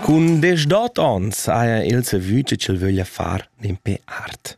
Cun deschdot ons haja el savü che ch'el vöglia far dimpe art.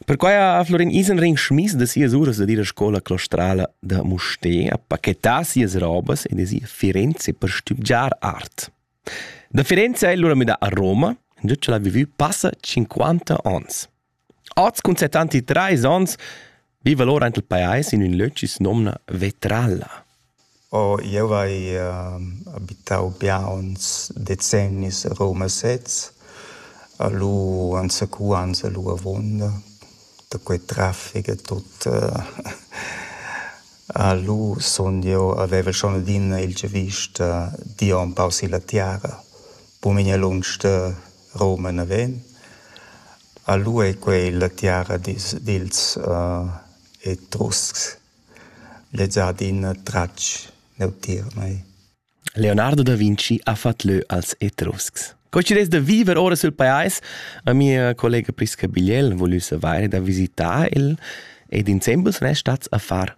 Perquai ha Florin Isenring schmiss da sias uras da ir a scola claustrala da Mustér a pachetar sias robas e da sia Firenze per stübgiar art. Da Firenze ha el lura midà a Roma, già ch'el ha vivü passa 50 ons. Oz cun settanti trais onns viva lura aint il pajais in ün löc chi's nomna Vetralla. Oh, jeu vai ehm, abitau biauns decennis a Roma sez. A lu anzacuans a lu avunda, da quei traffic e tut. A lu sun jeu avevel schon adina il giavüsch da dir empau silla tiara. Buca memia lunsch da Roma naven. A lu ei quei la tiara dils, dils Etruscs. Lez ha adina tratg neutier mei. Leonardo da Vinci ha fatg leu als Etruscs. Co ci des da viver ora sul pajais? Ma mia collega Prisca Bigliel vul ussa vaire da visitar il ed insembel sun es stats a far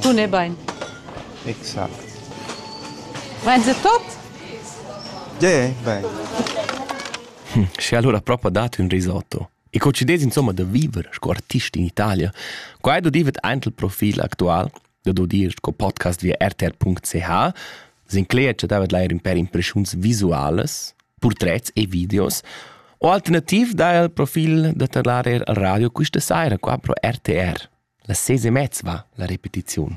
Tun è bain. Vain se tot? Ge, bain. Sche allora propa dat ün risotto. E co ci des insomma da viver sco artist in Italia? Qua è do divet aint il profil actual, da do dir sco podcast via rtr.ch, Sinclair chattava leir ün pêr impreschuns visualas, purtrets e videos, o alternativ dà el profil da tadlar eir al radio quista saira qua pro RTR. La ses e mezza va la repetiziun.